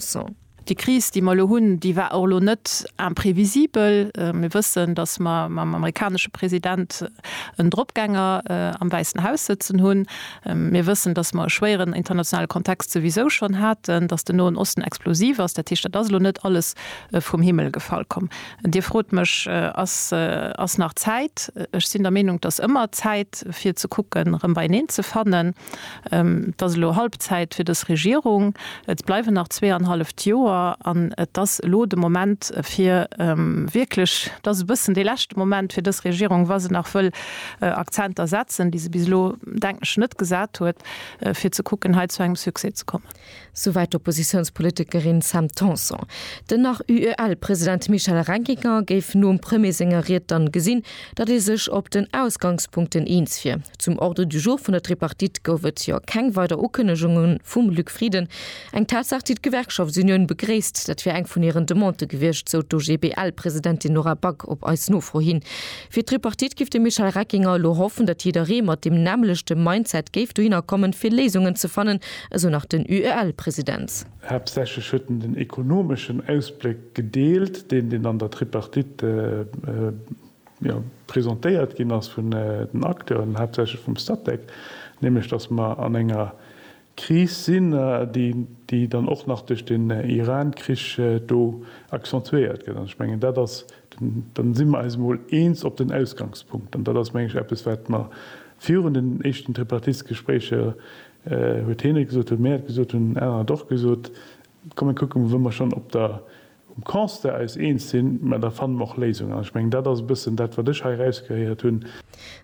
Son. Déi Kris, déi mer elo hunn, déi war och elo net imprévisibel. Mir wëssen, datt mer mam amerikanesche President en Dropgänger am Wäissen Haus sëtzen hunn. Mir wëssen, datt mer e schwéieren internationale Kontext souwisou schonn haten, datt den Noen Osten explosiv ass. Dat heescht, dat ass elo net alles vum Himmel gefall komm. Dir frot mech, Ass, ass nach Zäit? Ech sinn der Meenung, et ass ëmmer Zäit, fir ze kucken, erëm beieneen ze fannen. Et ass elo Halbzäit fir dës Regierung. Et bleiwen nach zweeanhalleft Joer an et ass elo de Moment fir wierklech, et ass e bëssen dee leschte Moment fir dës Regierung, wa se nach wëll Akzenter setzen, déi se bis elo, denken ech, net gesat huet, fir ze kucken hei zu engem Succès ze kommen. Souwäit d'Oppositiounspolitikerin Sam Tanson. Den nach UEL-President Michel Reckinger géif nom Premier senger Ried dann gesinn, datt ee sech op den Ausgangspunkten eens wier. Zum Ordre du jour vun der Tripartite gouf et jo keng weider Ukënnegunge vum Luc Frieden. Eng Tatsaach, déi d'Gewerkschaftsunioun begréisst. Dat wier eng vun hiren Demandë gewiescht, sou d'OGBL-Presidentin Nora Back op eis Nofro hin. Fir d'Tripartite giff de Michel Reckinger elo hoffen, datt jidderee mat deem nämmlechte Mindset géif dohinner kommen, fir Léisungen ze fannen, esou nach den UEL-President. Haaptsächlech huet en den ekonomeschen Ausbléck gedeelt, deen, deen an der Tripartite presentéiert ginn ass vun den Acteuren, haaptsächlech vum Statec, nämlech datt mer an enger Kris sinn, déi dann och nach duerch den Iran-Krich do accentuéiert gëtt. An ech mengen, dat ass den, dann si mer eis emol eens op den Ausgangspunkt. An dat ass, meng ech, eppes, wat mer virun den éischten Tripartite-Gespréicher, huet heen et gesot, huet Mer et gesot, hunn anerer et och gesot, kommen kucke mer, wou mer schonn op der, um Constat eis eens sinn, mä da fanne mer och Léisungen. An ech mengen, dat ass e bëssen dat, wat ech hei erausgehéiert hunn.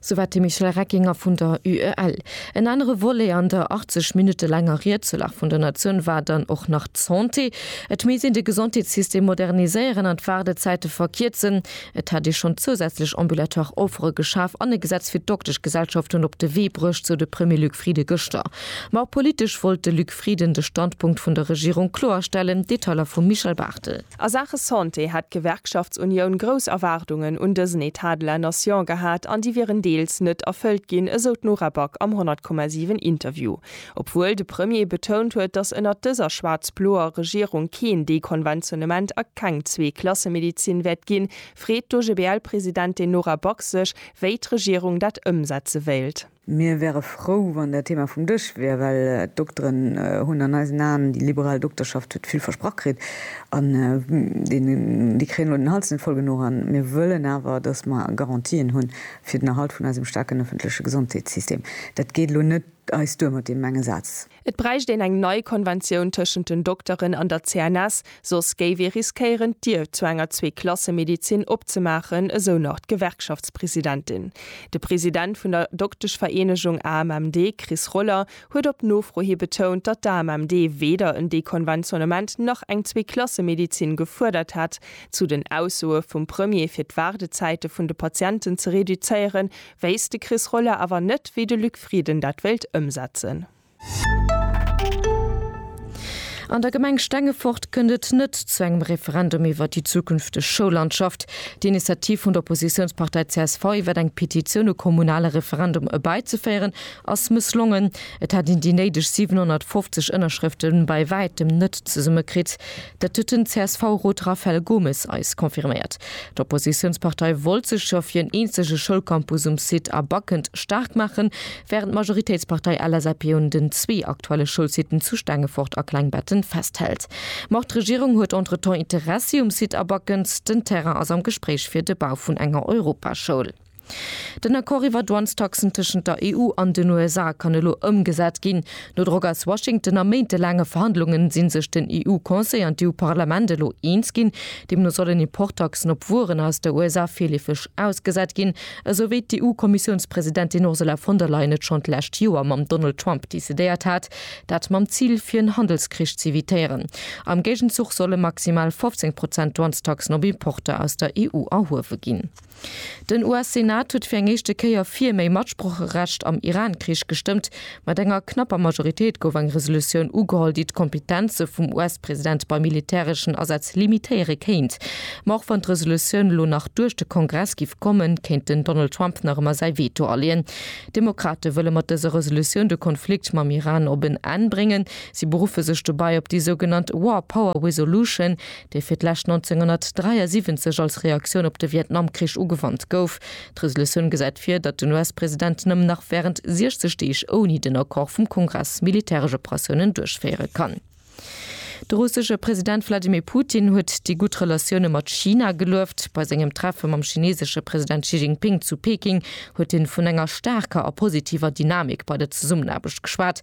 Souwat de Michel Reckinger vun der UEL. En anere Volet an der 80 Minutte laanger Ried zur Lag vun der Natioun war dann och nach d'Santé. Et misst een de Gesondheetssystem moderniséieren an d'Waardezäite verkierzen. Et hätt ee schonn zousätzlech ambulatoire Offere geschaf an e Gesetz fir d'Dokteschgesellschaften op de Wee bruecht, sou de Premier Luc Frieden gëschter. Ma och politesch wollt de Luc. Frieden de Standpunkt vun der Regierung kloerstellen, Detailer vum Michel Barthel. A Saache Santé hätt d'Gewerkschaftsunioun grouss Erwaardungen un dësen Etat de la Nation gehat an déi wieren deels net erfëllt ginn, esou d'Nora Back am 100,7 Interview. Obwuel de Premier betount huet, datt ënnert dëser schwaarz-bloer Regierung keen Dekonventionnement a keng Zwee-Klasse-Medezin wäert ginn, freet d'OGBL-Presidentin Nora Back sech, wéi d'Regierung dat ëmsetze wéilt. Mir wäre frou, wann dat Thema vum Dësch wier, well d'Dokteren hunn an eisen Aen, déi liberal Dokterschaft huet vill versprach kritt an déi kréien elo den Hals net voll genuch. A mir wëllen awer, datt mer Garantien hu fir den Erhalt vun eisem staarken ëffentleche Gesondheetssystem. Dat geet elo net eis duer mat deem enge Saz. Et bräicht een eng nei Konventioun tëschent den Dokteren an der CNS, soss géif ee riskéieren, d'Dier zu enger Zweeklassemedizin opzemaachen, esou nach d'Gewerkschaftspresidentin. De President vun der Dokteschvereenegung AMMD, Chris Roller, huet op Nofro hi betount, datt d'AMMD weder en Dekonventionnement nach eng Zweeklassemedizin gefuerdert hätt. Zu den Aussoe vum Premier, fir d'Waardezäite vun de Patienten ze reduzéieren, Wéisst de Chris Roller awer net, wéi de Luc Frieden dat wéilt ëmsetzen. An der Gemeng Stengefort kënnt et net zu engem Referendum iwwer déi zukünfteg Schoullandschaft. D'Initiativ vun der Oppositiounspartei csv iwwer eng Petitioun e kommunale Referendum erbäizeféieren ass mësslongen. Et hätt een déi néideg 750 Ënnerschrëfte bei wäitem net zesummekritt. Dat huet den CSV-Rot Rafael Gomes eis confirméiert. D'Oppositiounspartei wollt sech jo fir en eenzege Schoulcampus um Site A Backend staark maachen, wärend d'Majoritéitspartei LSAP un den zwee aktuelle Schoulsiten zu Stengefort a Klengbetten festhält. Ma och d'Regierung huet entretemps Interessi um Site A Backend. Den Terrain ass am Gespréich fir de Bau vun enger Europaschoul. Den Accord iwwer Douanestaxen tëschent der EU an den USA kann elo ëmgesat ginn. No Drock aus Washington a méintelaange Verhandlunge si sech den EU-Conseil an d'EU-Parlament elo eens ginn. Deemno sollen Importtaxen op Wueren aus der USA virleefeg ausgesat ginn, esou wéi d'EU-Kommissiounspresidentin Ursula von der Leyen et schonn d'lescht Joer mam Donald Trump decidéiert hat, dat mam Zil, fir en Handelskrich z'evitéieren. Am Géigenzuch solle maximal 15 Prozent Douanestaxen op Importer aus der EU erhuewe ginn. Den US-Senat huet fir eng éischte Kéier fir méi Matsprocherecht am Iran-Krich gestëmmt. Mat enger knapper Majoritéit gouf eng Resolutioun ugeholl, déi d'Kompetenze vum US-President bei militäreschen Asätz limitéiere kéint. Ma och wann d'Resolutioun elo nach duerch de Kongress giff kommen, kéint den Donald Trump nach ëmmer säi Veto aleeën. D'Demokrate wëlle mat dëser Resolutioun de Konflikt mam Iran op en Enn bréngen. Si beruffe sech dobäi op déi sougenannt War Power Resolution, dee fir d'lescht 1973 als Reaktioun op de Vietnamkrich ugewannt gouf. D'Resolutioun gesäit vir, datt den US-President nëmmen nach wärend 60 Deeg ouni den Accord vum Kongress militäresch Operatiounen duerchféiere kann. De russesche President Wladimir Putin huet déi gutt Relatioune mat China gelueft. Bei sengem Treffe mam chineesesche President Xi Jinping zu Peking huet hien vun enger staarker a positiver Dynamik bei der Zesummenaarbecht geschwat.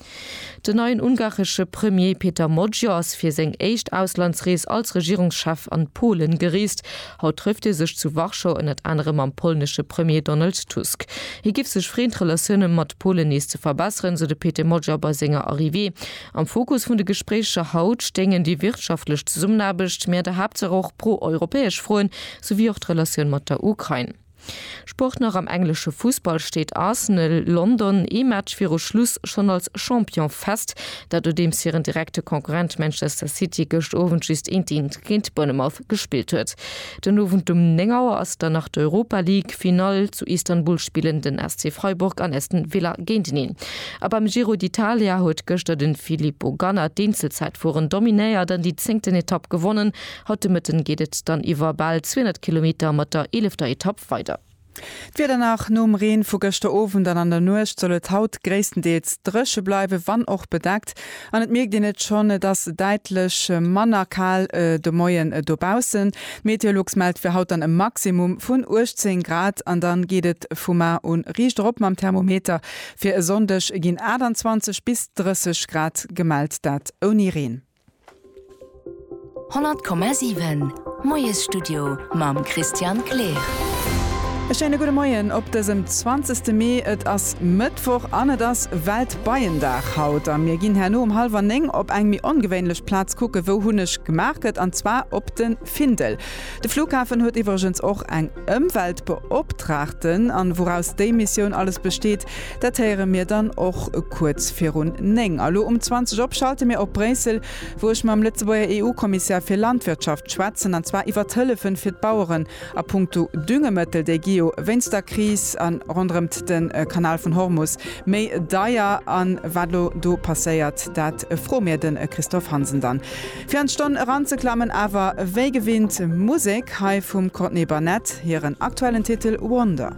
Den neien ungaresche Premier Peter Magyar ass fir seng éischt Auslandsrees als Regierungschef an Polen gereest. Haut trëfft hie sech zu Warschau ënnert anerem mam polnesche Premier Donald Tusk. Hie géif sech freeën d'Relatioune mat Polen nees ze verbesseren, sou de Pete Magyar bei senger Arrivée. Am Fokus vun de Gespréicher haut stéingen déi wirtschaftlech Zesummenaarbecht, mee an der Haaptsaach och pro-europäesch Froen, souwéi och d'Relatioun mat der Ukrain. Sport Nach am englesche Fussball steet Arsenal London ee Match viru Schluss schonn als Champion fest, dat nodeems hiren direkte Konkurrent Manchester City gëscht Owend just eenteent géint Bournemouth gespillt huet. Den Owend um 9 Auer ass dann nach d'Europa League Finall, zu Istanbul spillen den SC Freiburg an Aston Villa géinteneen. A beim Giro d'Italia huet gëschter de Filippo Ganna d'Eenzelzäitfueren dominéiert an déi zéngten Etapp gewonnen, Haut de Mëtten geet et dann iwwer bal 200 Kilometer mat der eelefter Etapp weider. D'Wieder nach, Nom Reen vu gëschter Owend an an der Nuecht soll et haut gréisstendeels dréche bleiwen, wann och bedeckt. An et mierkt een et schonn, et ass däitlech manner kal de Moien dobaussen. D'Meteolux mellt fir haut dann e Maximum vun 18 Grad an dann geet et vu mar un riicht erop mam Thermometer. Fir e Sonndeg ginn 28 bis 30 Grad gemellt, dat ouni Reen. 100,7 Moiesstudio mam Christian Kleer. E schéine gudde Moien op dësem 20 Mee. Et ass Mëttwoch an et ass Weltbeiendag haut. A mir ginn herno um hallwer néng op eng méi ongewéinlech Plaz kucken, wou Hunneg gemaach gëtt, an zwar op de Findel. De Flughafen huet iwwregens och eng Ëmweltbeoptraagten, an wouraus déi Missioun alles besteet, dat héiere mir dann och kuerz virun 9. A lo um 20 op schalte mir op Bréissel, wou ech mam Lëtzebuerger EU-Kommissär fir Landwirtschaft schwätzen, an zwar iwwert d'Hëllefen fir d'Baueren a punkto Düngemëttel, déi gi jo wéinst der Kris a ronderëmt de Kanal vun Hormus méi deier. An wat lo do passéiert, dat froe mir de Christophe Hansen dann. Fir an d'Stonn eranzeklammen awer wéi gewinnt Musek hei vum Courtney Barnett hiren aktuellen Titel Wonder.